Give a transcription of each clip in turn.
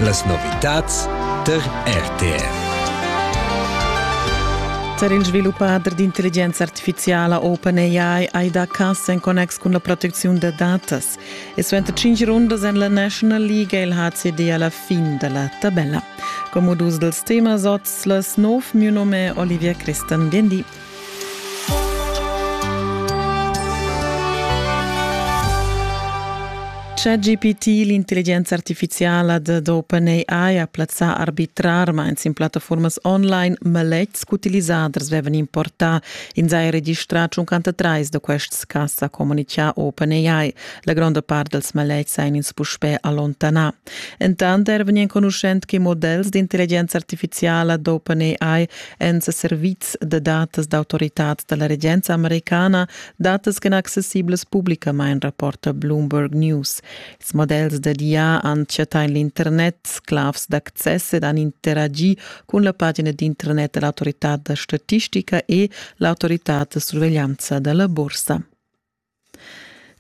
Las novitads tar RTR. Tar il sviluppader d'intelligenza artificiala OpenAI hai dà cass en connex cun la protecziun da datas. E suenter cinq rundas en la National League è il HCD a la fin da la tabella. Come dus dels temas oz les nov mio nome Olivia Christan Biendi. ChatGPT, l'intelligenza artificiala dad OpenAI ha plazzà arbitrarmains in plattaformas online maletgs ch'utilisaders vevan importà. Ins ha registrà 53 da quests cas, ha communichà OpenAI. La gronda part dals maletgs ein ins puspè allontanà. Entant eran enconuschent che models d'intelligenza artificiala d'OpenAI èn sa servids da datas d'autoritad da la regenza americana, datas ch'en accessiblas publicamain, rapporta Bloomberg News. Ils models da DIA han chattà en l'internet sclavs d'access ed han interagi cun la pagina d'internet dell'autorità da statistica e l'autorità da surveglianza da la borsa.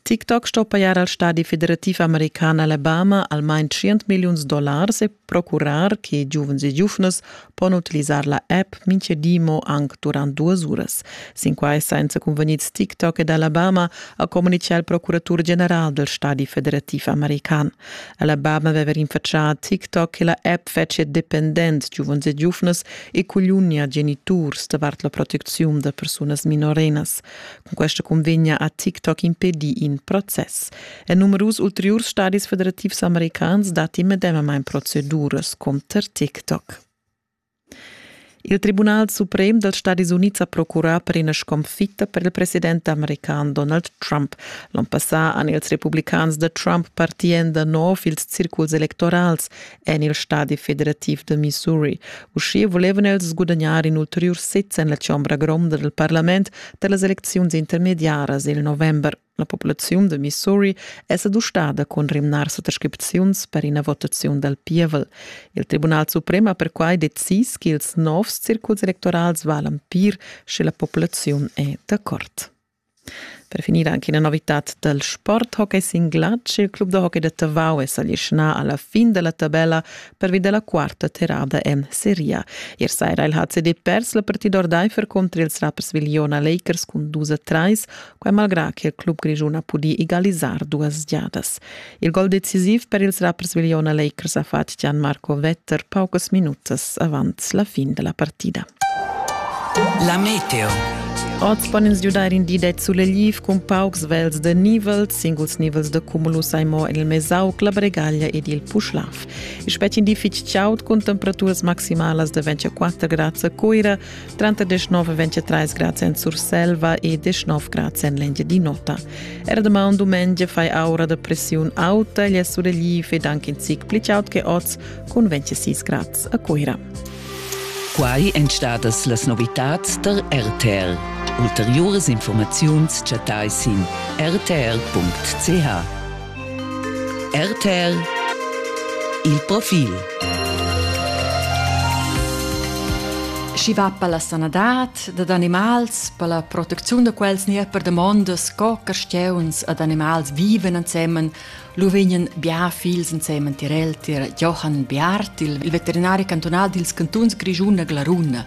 TikTok sto pajar al stadi federativ american Alabama almain tschient milliuns dollars e procurar che giuvens e giuvnas pon utilisar la app Minche di mo anc durant duas uras. Sin quai senza cunvegnids TikTok ed Alabama ha communitgà il procuratur general del stadi federativ american. Alabama aveva rinfaccià a TikTok che la app fetschia dependent giuvens e giuvnas e cugliunia geniturs davart la protecziun da persunas minorenas. Questa convegna ha TikTok impedì in process. En numerus ulteriurs stadis federativs americans datti medemamain proceduras contro TikTok. Il Tribunal suprem dels Stadis Units ha procurà per ina sconfitta per il president american Donald Trump. L'on passà han ils republicans da Trump partì en da nov ils circuls electorals en il stadi federativ da Missouri. Uschia vulevan els gudagnar in ulteriur sez en la chombra gronda del parlament da las elecziuns intermediaras il november. La populaziun de Missouri è s'adustada cun rimnar suttascripziuns per ina votaziun dal pievel. Il Tribunal Suprem ha perquai decis che ils novs circuls electorals valan pir sche la populaziun è d'accord. Per finir anche una novità dal sporthockey sin glatsch. Il club da hockey da Tavau è s'alischnà alla fin della tabella pervi della quarta terrada en Serie. Ier saira il HCD pers la partida ordaifer contro ils rappers Viliona Lakers cun 2-3, quai malgrà che il club grigiun ha pudì egalisar duas giadas. Il gol decisiv per ils rappersvigliona Lakers ha fatg Gian Marco Vetter paucas minutas avant la fin della partida. La meteo. Oz pon ins giudair in di det sulegliv cun paucs vels de nivel, singuls nivels de cumulus ai mo en il Mesauc, la Bregaglia ed il Puschlav. Il spetg in di fitg chaud cun temperaturas maximalas de 24 grads a Coira, Tranter 19 23 grads en Surselva e 19 grads en l'Engiadin'Ota. Er damaun dumengia fai aura da pressiun auta gli surrelief ed anche in zic pli aut che oz con 26 grads a Cuira. Quai èn stadas las novitads der RTL. Ulteriores Informaziuns chattai sin rtl.ch. RTL Il profil Schi va per la sanadad dad animals, per la protecziun da quels ni per damondas co carstieuns ad animals viven ensemen, lu vegnan bia fils ensemen tirel tir Johann Biart, il veterinari cantonal dils cantuns Grischun a Glaruna.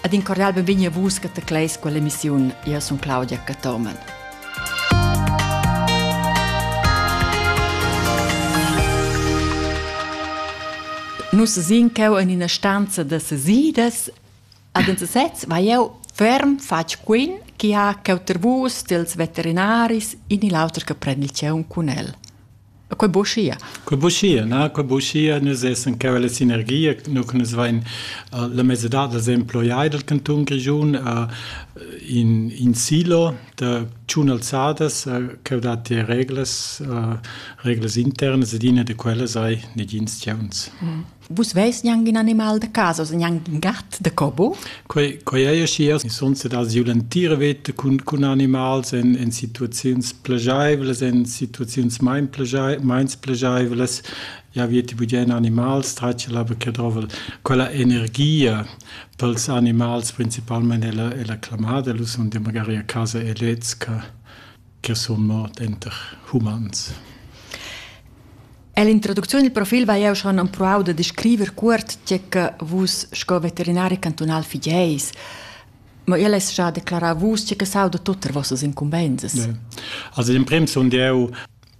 Ed in cordial benvegni a vus che tecleis quell'emissiun. Io sun Claudia Cathomen. Nus sin cheu en ina stanza da sesidas ad uns sez va jeu ferm fatg quin chi ha cheu ter vus dels veterinaris in il auter che prend il tgeun cun el. E quei buschia. Quei buschia, na, quei buschia, nus essan cheu la sinergia, nu che nus vein uh, la mesedad da emploiai del canton Grischun uh, in, in silo da tschun alzadas uh, cheu dat die reglas, uh, reglas internas ed ina de quellas ei negins tgeuns. Mm. Vus veis gnanc in animal da casa, oz gnanc in gat da cobo? Quei, quei ei aschia, sun sedars jeu l'entira veta cun, cun animals en, en situaziuns plegeivlas, en situaziuns mein meins plegeivlas. Ja, vi ti bugen animals, tratge la che drovel quella energia pels animals principalmente è la, è la clamada, lu sun magari a casa e lez che che sun mort enter humans. Ell'introducziun il profil vai jeu schon empruau da descriver cuort tge che vus sco veterinari cantunal figeis. Ma ella es già declarar vus tge che sauda tut er vossas incumbensas. Ja. Also in prim sun eu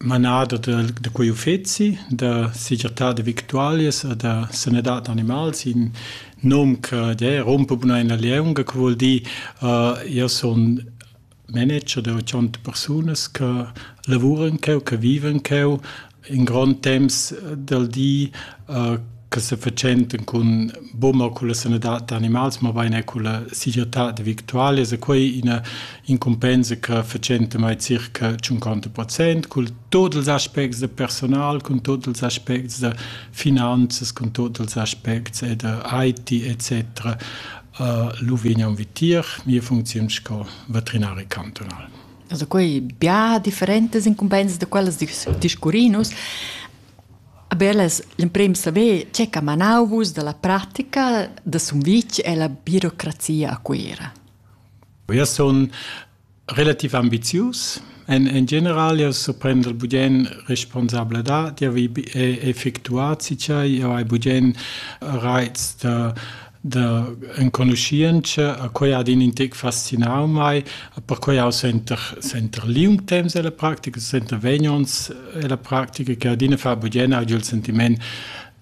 manader de, de quei uffeci da segirtà de victualias e da sanadad animals in nom che ja, rompe buna in la leunga, che vuol dir uh, io sun managers da tschient persunas che lavuran cheu, che vivan cheu in grond temps dal di, che se fatschentan cun boma culla sanadad da animals, mabain er culla segirtad victualias e quei ina incumbensa che fatschenta mai circa 50 procent cul tot ils aspects da personal, cun tot ils aspects da finanzas, cun tot ils aspects e da IT etc. lu vegnan vitier mia funcziun sco veterinari cantunal. Also quei bia differentas incumbensas da quellas discurrin nus. Aber las l'emprim saver tge che manau vus dalla pratica da Sumvitg e la birocrazia a Cuira. Eu sun Relativ ambizius èn en general jau surprender bugen responsabladad. Jau hai effectuà tgei jau hai bugen raits da da enconuschientscha, quei ha in intec fascinau mei. Perquei jau senter senter liung temps ella practica, senter vegn onns ella practica che adina fa bugen agli il sentiment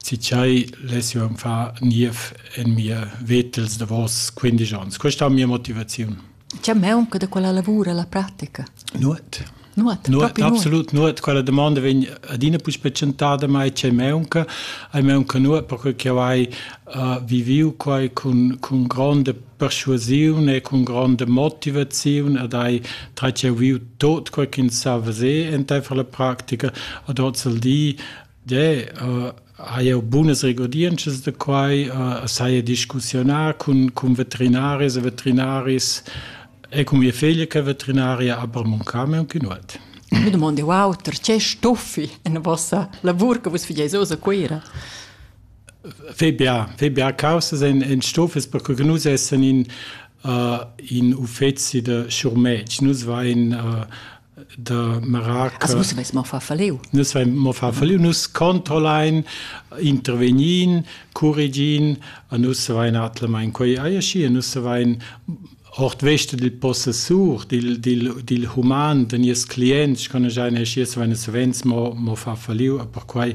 tgei less jeu far niev en mia veta ils davos quindisch onns. Questa è mia motivaziun. Tgei meunca da quella lavura la pratica? Nuot. Nuot, nuot absolut nuot. Quella domanda vegn adina più specentada, ma c'è meunca. Hai meunca nuot, perché che vai uh, viviu quai con, con grande persuasione e con grande motivazione ad hai tra che viu tot quel che sa vese entei fra la pratica ad oz il di De, uh, ha eu bunas regodientschas da quai, uh, saia discussiunar cun, cun veterinaris e veterinaris e cun mia figlia che è veterinaria, aber mon came un chinuet. Mi domandi, wow, perché stuffi in vossa lavur che vus figeis osa Cuira? Fe bia, fe bia causas en, en stoffes, perché nus essen in, uh, in uffezi de schurmetg. Nus vain uh, da Marac nus veis mo far falliu nus veis mo far falliu nus controlein intervegnin curigin a nus vein atlemain quei ei schi nus vein ort veste dil possessur dil dil dil human den ies clients kann ich eine schies wenn es wenns mo mo fa falliu per quei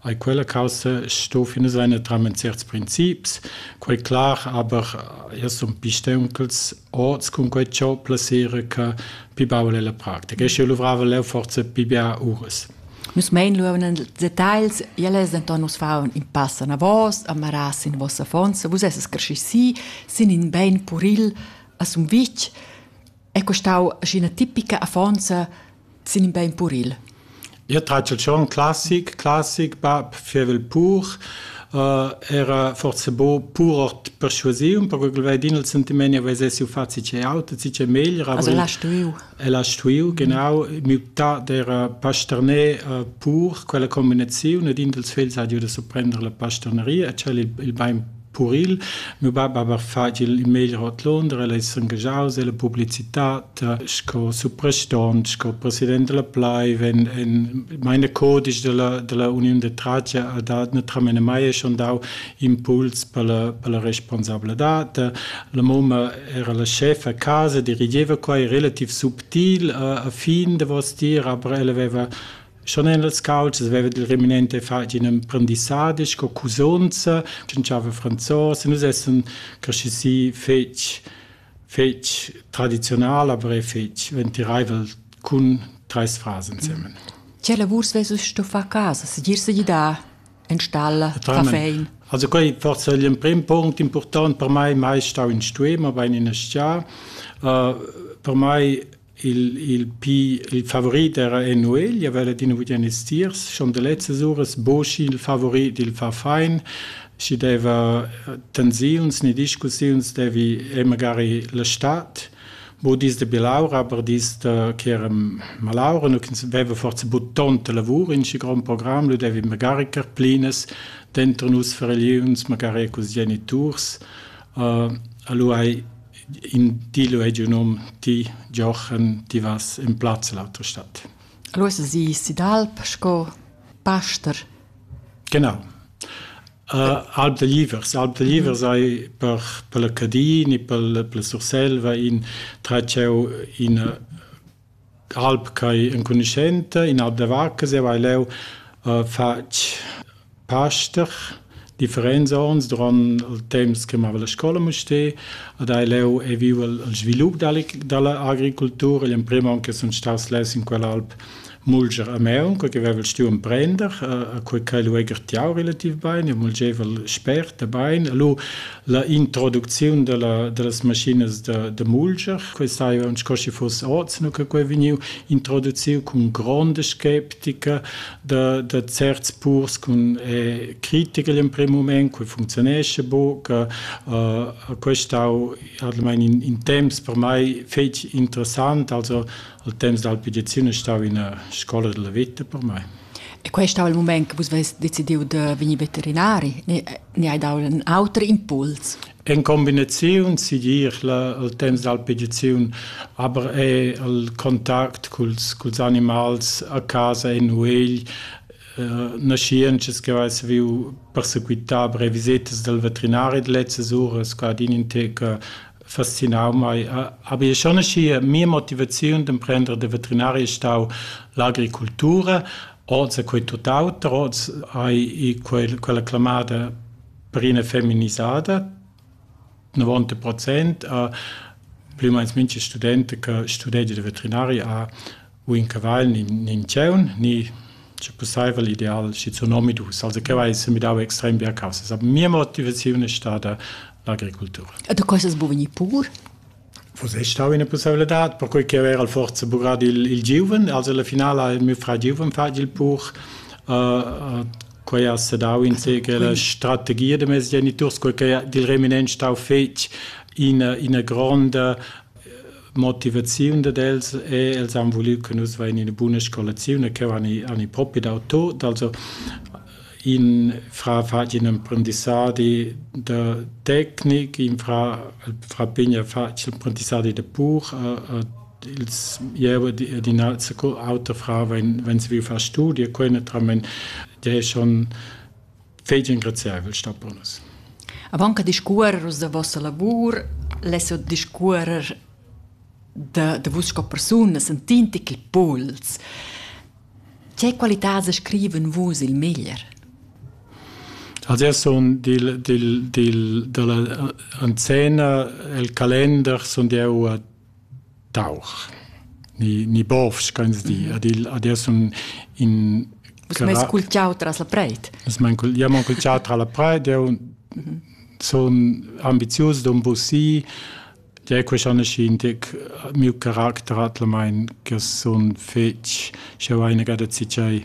ei quella causa sto fine seine tramen certs princips quei klar aber es un pistenkels oz cun quei ciò plasere che pi baul è la pratica. E sche luvrava leu forse pi bia uras. Nus mein luevan en details, ja les denton nus faun in pass anavos, amaras in vossa fonza, vus esses cresci si, sin in bein puril a Sumvitg, è costau ina tipica affonza sin in bein puril. Io tratg il chant classic, classic, bab fievel pur, uh, era forse bo purort persuasiun, perché quel veidin il sentiment vesessi fazi ce aut, si ce meglier. Also l'ha stuiu. E l'ha stuiu, genau, muta der pasterner uh, pur, quella combinazione, ed in dels fels ha giuto a prendere la pasterneria, e c'è il, il bein Puril. Miu bab hava fatg il meglier ord Londra, el ei s'engaschaus ella publicitad sco supraston, sco president dalla pleiv. En, en meine codisch dalla, dalla uniun de tratga ha dat naturalmein mai e schon dau impuls per la, per la responsabladad. La mumma era la schef a casa, dirigeva quei relativ subtil a, a fin davos dir, aber ella veva Schon en las calzas veva il reminente fatg in emprendissadi sco cusonza, tschintschava franzos e nus essan cresci si fetg fetg tradizional, aber è fetg ventiraivel cun treis frars ensemen. Tge lavurs vesus sto far a casa, segir segidar, enstalla, caffein? Also quei forse è l'emprim punct important per mai, mai stau in stuer, ma bein in stia. Uh, per mai Il, il pi il favorit era Enuegl, el veva adina vuglia estiers, schon da lezzas uras Boci il favorit, il fa fein, schi deva tensiuns ni discussiuns devi e magari la stad, bo dis da bilaura, aber dis da che era malaura, nu ch'ins veva forza but tonta lavur in schi grand program, lu devi magari carplinas dentro nus far religiuns, magari cus geniturs. Uh, alura hai Ti lu hai giu num, ti Giochen, ti vas en plaz l'autra stad. El ussa si Sidalp sco paster. Genau. Alp da Livers. Alp da Livers ei per, per la Cadin e per, per la Surselva in tratschau ina Alp ch'ei enconuschenta, in alp da vacca zieva ei leu fatg paster differents onns duront il temps che mava la scola a Mustér ed hai leu ei viu il svilup dalla agricultura. Igl emprem onn che sun staus less in quella alp mulger a Maun, quei che vevel stuiu emprender, e quei ch'ei lu ei gartiau relativ bein, jeu mulgevel spert e bein. E lu la introducziun della, dellas maschinas da, da mulger. Questa hai aunc schi fuss oz, no che quei vegniu introduciu cun gronda skeptica da, da certs purs cun eh, critiker in prim moment, cui funzionesce bo, che uh, questau almeno in, in temps per mai fetg interessant, also al temps dell'alpidizione stau in una scuola della vita per me. E questo è il momento che voi decidiu di venire veterinari. E Ni hai dau in auter impuls? En combinaziun sigir il temps d'alpigiaziun, aber è il contact culs, culs animals a casa en nuegl eh, naschientschas che hai saviu persequitar per revisitas del veterinari de lezzas uras, qua din in tec fascinau mai. Aber ich schon hier mia motivaziun d'emprender de veterinaria stau l'agricultura, oz quei tutt'auter, oz hai quel, quella clamada perina feminizzata, 90%, a, plü meins mincha studente che studege de veterinaria ha u in cavagl ni in tgieun ni sche pusseivel ideal schizun omadus, also che vai semidau extrem bia caussas. Aber mia motivaziun è stata l'agricultura. E da questas bu vegnir pur? Vus è stau ina possibilità, perquei che era al forza bugrad il, il giuven, also la finale ha il mio fra giuven fatg il pur. Uh, quei ha sedau in segel la strategia de mes geniturs, quei che dil reminent stau fetg ina, ina gronda motivaziun dad els e els han volit che nus vein ina buna scolaziun e che han i, han i propi dau tot. Also in fra fatg in imprendissadi da tecnic, in fra, fra pigna fatg imprendissadi da pur, uh, uh, ils jewe die die nazi auto fra wenn wenn sie will far studie können tramen der schon fetg engraziaivel star pro nus. Avant che discuorer vos da vossa lavur, less discuorer da, da vus sco persuna sentint che puls. Che qualità scriven vus il meglier? Also er son dil, dil, dil, dalla anzena el calender son deu a Tauch ni ni bovs che ins di. Ad igl ad ir sun in Vus m'eis cultiau tras la preit. Vus m'ein cul- jeu m'han cultiau tra la preit, jeu sun ambizius d'embusir. Jeu queschaneschi in tec miu caracter atlamein che sun fetg, sch'jeu hai inagada tschei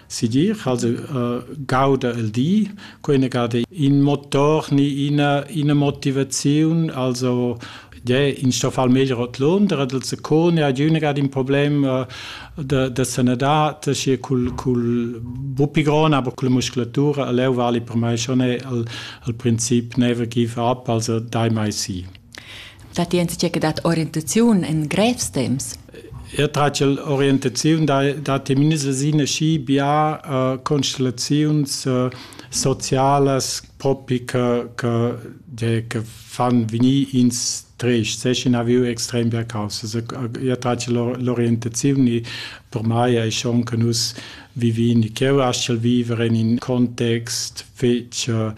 Sigir cha'ls gauda il di, quai gada in motor ni ina ina motivaziun, also yeah, in sto far meglier ot Londra, dal secun ja giüna gad in problem da da sanadad, schi cul cul buppi grond, aber culla musculatura a leu vali per mai schon al al princip never give up, also dai mai si. Datti enzatge che dat orientaziun en grevs temps? Er tratgel orientaziun datti minusina schi bia uh, constellaziuns uh, socialas propi che, che, che, che fan venir ins trist, seschin aviu extrem bia causas. Ia trace l'orientazione per mai è schon che nus vivin, che eu astgel vivere in in context fetg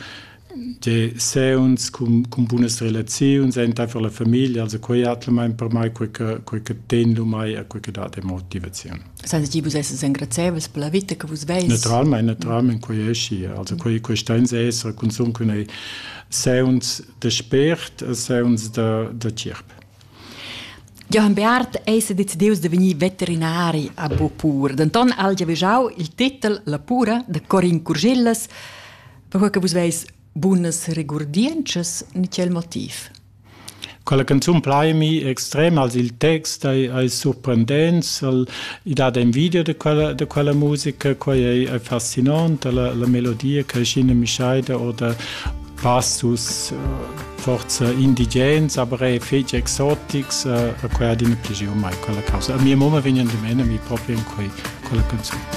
Tge seuns cun, cun bunas relaziuns entaifer la famiglia, also quei atlemein per mai quei che, quei che ten lu mai e quei che dat e motivaziun. Sens ti vus esses engrazieivels per la vita che vus veis? Naturalmein, naturalmein quei è schi. Also quei, quei stein esser consum cun ei seuns de spért e seuns de, de cirp. Johann Beat eis decideus de vegnir veterinari a Bopur. Denton ha el giaveggiau il titel La pura de Corin Curgillas, Perquai che vus veis bunas regurdientschas ni quel motiv. Quella canzun plaimi extrem als il text ai, ai surprendents, al, i dat envidia de quella, de quella musica, quai è, è fascinant, la, la melodia che Scine Mischaida oder passus uh, forza indigens, aber è feci exotics, uh, a quella din più mai quella causa. A mia mamma vegnan di mena mi proprio in quei, quella canzone.